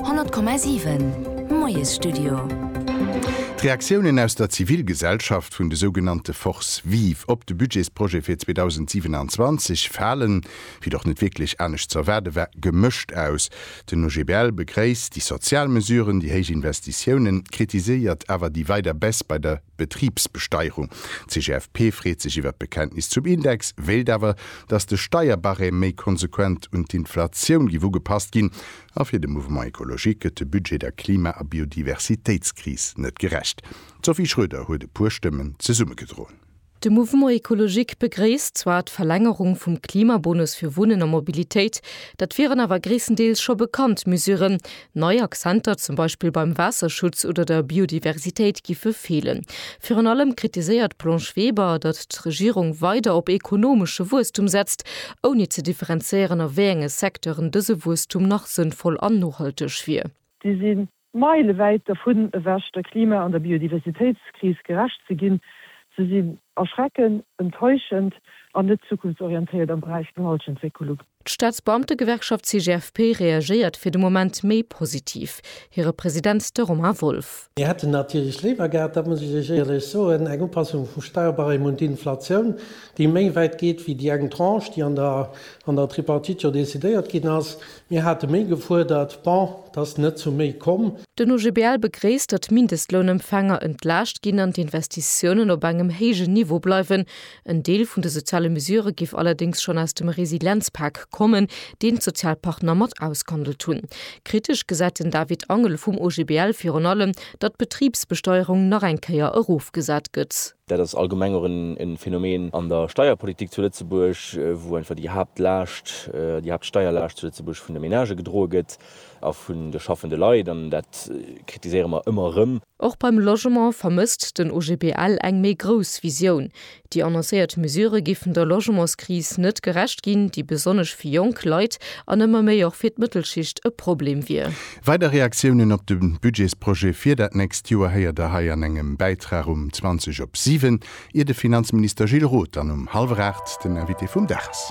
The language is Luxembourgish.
100,7 Moiesstudio. D'Reaktiounen aus der Zivilgesellschaft vun de sougenannte Forces vives op de Budgetsprojet fir 2027 falen, wéi et och net wierklech anescht ze erwaarde war, gemëscht aus. Den OGBL begréisst déi sozial Mesuren, déi héich Investitiounen, kritiséiert awer déi weider Baisse bei der. Betribsbesteierung. D'CGFP freet sech iwwert d'Bekenntnis zum Index, wéilt awer, datt de Steierbarème méi konsequent un d'Inflatioun giff ugepasst ginn. A fir de Mouvement écologique gëtt de Budget der Klima a Biodiversitéitskris net gerecht. D'Sophie Schroeder huet e puer Stëmmen zesummegedroen. De Mouvement écologique begréisst zwar d'Verlängerung vum Klimabonus fir Wunnen a Mobilitéit, dat wieren awer gréisstendeels scho bekannt Mesuren, Nei Accenter zum Beispill beim Waasserschutz oder der Biodiversitéit giffe feelen. Virun allem kritiséiert d'Blanche Weber, datt d'Regierung weider op ekonomesche Wuesstum setzt, ouni ze differenzéieren a wéi enge Secteuren dëse Wuesstum nach sënnvoll an nohalteg wier. Si si meilewäit dervun ewech, der Klima an der Biodiversitéitskris gerecht ze ginn. Se sinn erschreckend, enttäuschend an net zukunftsorientéiert am Beräich Gehaltsentwécklung. D'Staatsbeamtegewerkschaft CGFP reagéiert fir de Moment méi positiv. Hire President, de Romain Wolff. Mir hätten natierlech léiwer gehat, dat muss ech Iech éierlech soen, eng Upassung vum Sparbarème un d'Inflatioun, déi méi wäit geet wéi déi eng Tranche, déi an der Tripartite jo decidéiert ginn ass. Mir hate méi gefuerdert. Bon, et ass net zu méi komm. Den OGBL begréisst, datt d'Mindestlounempfänger entlaascht ginn an d'Investitiounen op engem héijen Niveau bleiwen, En Deel vun de soziale Mesure géif allerdéngs schonn aus dem Resilienzpak kommen, deen d'Sozialpartner mat ausgehandelt hunn. Kritesch gesäit den David Angel vum OGBL virun allem, datt d'Betribsbesteuerung nach eng Kéier erofgesat gëtt. Dat ass allgemeng och e Phänomen an der Steierpolitik zu Lëtzebuerg, wou einfach déi Haaptlaascht, déi Haaptsteierlaascht zu Lëtzebuerg vun de Menagë gedroe gëtt. A vun de schaffende Leit, an dat kritiséiere mer ëmmer erëm. Och beim Logement vermësst den OGBL eng méi grouss Visioun. Déi annoncéiert Mesurë giffen der Logementskris net gerecht ginn, déi besonnesch fir jonk Leit an ëmmer méi och fir d'Mëttelschicht e Problem wier. Weider Reaktiounen op de Budgetsprojet fir dat nächst Joer héiert der hei an engem Bäitrag um 20 op 7, ier de Finanzminister Gilles Roth dann um hallwer 8 den Invité vum Dag ass.